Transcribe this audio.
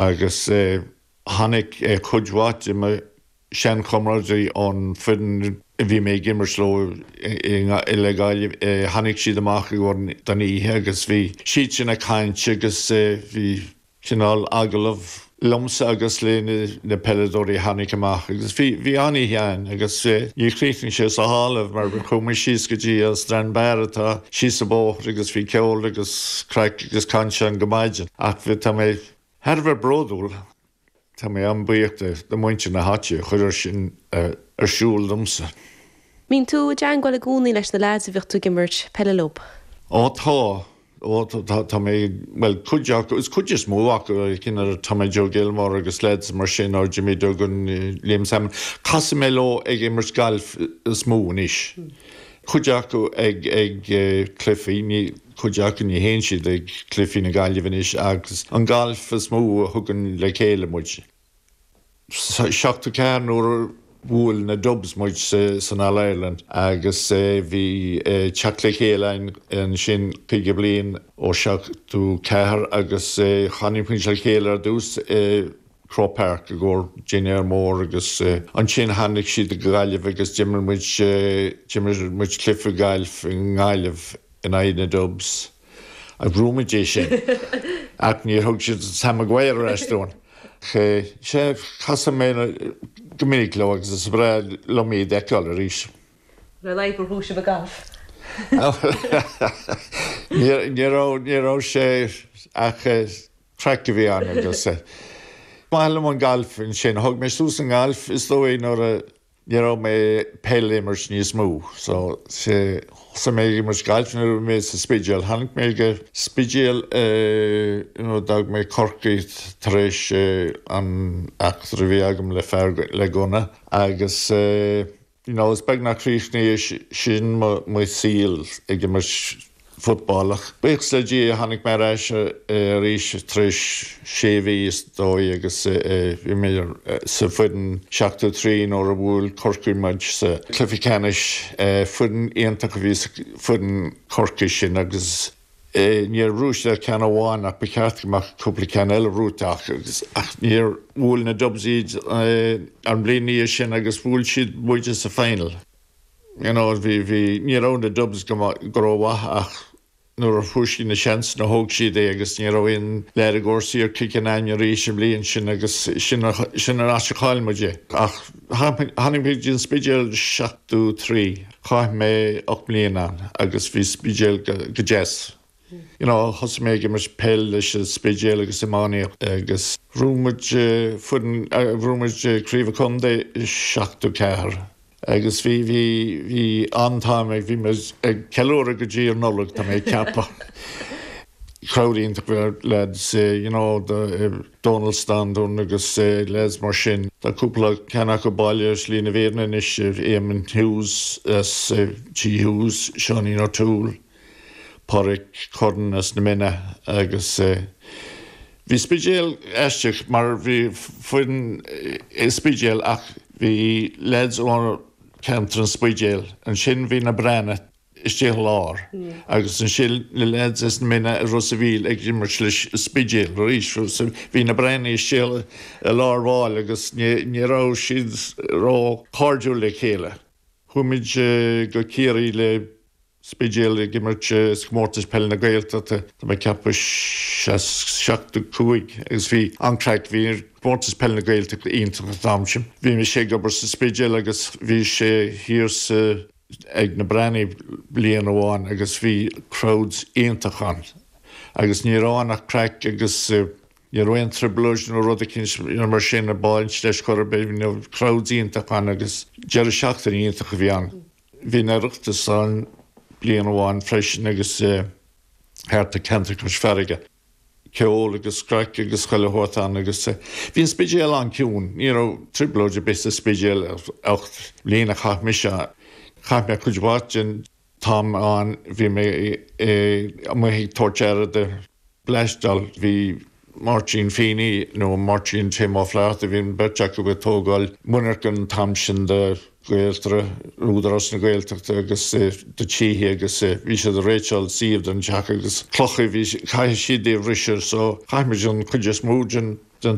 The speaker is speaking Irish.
agus tháinig cuid mhaith de mo sheanchomrádaithe ón bhfoireann a bhí mé ag imirt leo le Gaillimh, tháinig siad amach i gcomhair don oíche agus bhí siad sin ag caint agus bhí cineál agallamh liomsa agus le na peileadóirí a tháinig amach agus bhí, bhí an-oíche ann agus níor chríochnaigh sé sa halla mar chuaigh muid síos go dtí an Strand Bar atá síos an bóthar agus bhí ceol agus craic agus caint ann go maidin ach tá mé. Thar a bheith bródúil, tá mé an-buíoch de do mhuintir na háite a chuir é sin ar siúl domsa. Mbíonn tú i dteangmháil i gcónaí leis na leaids a bhíodh tú ag imirt peile leo? Ó tá, ó tá mé, bhuel cuid acu, is cuid is mó acu, a, cinn, Tommy Joe Gilmore agus leaids mar sin, nó Jimmy Duggan, Liam Sammon. Casann mé leo ag imirt gailf is mó anois. Cuid acu ag cluifí. cuid acu ní théann siad ag cluifí na Gaillimhe anois agus an galf is mó a thugann le chéile muid. Seachtó ceathair nuair a bhuail na Dubs muid san All-Ireland agus bhí teacht le chéile againn ansin caoga bliain ó seachtó ceathair agus tháinig muid le chéile ar dtús i Croke Park i gcomhair dinnéar mór agus ansin tháinig siad go Gaillimh agus d'imir muid d'imir muid cluife gailf i nGaillimh. in aghaidh na Dubs. Agus bhuaigh muid é sin. Ach níor thug siad Sam Maguire ar ais dúinn. Sea, sea, casadh mé go minic leo agus is breá liom iad a fheiceáil arís. Nár laidh gur thug sibh a gcath. Ní raibh sé ach craic a bhí ann agus. Is maith liom an galf ansin. Thug mé suas an galf is dóigh nuair a. Ní raibh mé ag peil a imirt níos mó. So, thosaigh mé ag imirt gailf nuair a bhí mé sa Spidéal. Tháinig mé go dtí an Spidéal eh, you know, d'fhág mé Corcaigh tar éis eh, an eachtra a bhí agam le fear le gunna agus eh, you know, is beag nár chríochnaigh sin mo, mo shaol ag imirt, football, ach buíochas le Dia tháinig mé ar ais arís tar éis sé mhí is dóigh agus bhí mé sa foireann seachtó a trí nuair a bhuail Corcaigh muid sa cluiche ceannais. Foireann iontach a bhí sa foireann Chorcaí sin agus níor bhuaigh siad ach ceann amháin ach ba cheart go mbeadh cúpla ceann eile buaite acu ach níor, bhuail na Dubs iad an bhliain ina dhiaidh sin agus bhuail siad muide sa final. you know, bhí, bhí, ní raibh na Dubs go maith, go rómhaith ach nuair a fuair siad an seans nó thóg siad é agus ní raibh aon lear i gcúrsaí ag Cill Chonáin arís an bhliain sin agus sin a, sin an áit a chaill muid é. Ach tháinig mé go dtí an Spidéal seachtó trí, chaith mé ocht mbliana ann agus bhí Spidéal go, go deas. You know, thosaigh mé ag imirt peil leis an Spidéal agus iománaíocht agus bhuaigh muid foireann, bhuaigh muid craobh an chontae seachtó ceathair. Agus bhí, bhí, bhí an-time ag, bhí mé ag ceiliúradh go dtí an Nollaig, tá mé ag ceapadh. Crowd iontach bhí ar leaids, you know, do Dónal Standún agus leaids mar sin. Tá cúpla ceann acu bailithe ar Shlí na Fírinne anois, Éamonn Hughes as Tigh Hughes, Seáinín O'Toole. Pádraic Curran as na Minna agus bhí Spidéal aisteach mar bhí foireann i Spidéal ach bhí leaids ó cheantar an Spidéil, ansin bhí na Breathnaigh istigh i lár agus ansin na leaids as na Minna is Ros an Mhíl ag imirt le Spidéal arís so bhí na Breathnaigh istigh i lár baill agus ní raibh siad róchairdiúil le chéile. Chuaigh muid go Ciarraí le Spidéal ag imirt i gComórtas Peile na Gaeltachta. Tá mé ag ceapadh seachtó cúig agus bhí an-craic, bhí Comórtas Peile na Gaeltachta iontach an t-am sin. Bhí mise ag obair sa Spidéal agus bhí sé thiar sa, ag na Breathnaigh bliain amháin agus bhí crowd iontach ann agus ní raibh ann ach craic agus ní raibh aon trioblóid nó rud eicínt mar sin ag baint leis chor ar bith, bhí crowd iontach ann agus deireadh seachtaine iontach a bhí ann. Bhí an Oireachtas ann bliain amháin freisin agus thart ar Ceantar Cois Farraige, ceol agus craic agus chuile shórt ann agus bhí an Spidéal an-ciúin. Ní raibh trioblóid ar bith sa Spidéal ar ocht mbliana a chaith mise ann. Chaith mé cuid mhaith den t-am ann, bhí mé amuigh ag tabhairt aire do. bleaisteáil. Bhí Máirtín Feeney nó Máirtín Tim Ó Flatharta, bhí an bheirt acu ag tógáil monarcha an t-am sin do Ghaeltarra, Údarás na Gaeltachta agus do tithe agus bhí siad ag réiteáil suíomh don teach agus clocha a bhí, caithfidh siad é a bhriseadh so chaith muid an chuid is mó den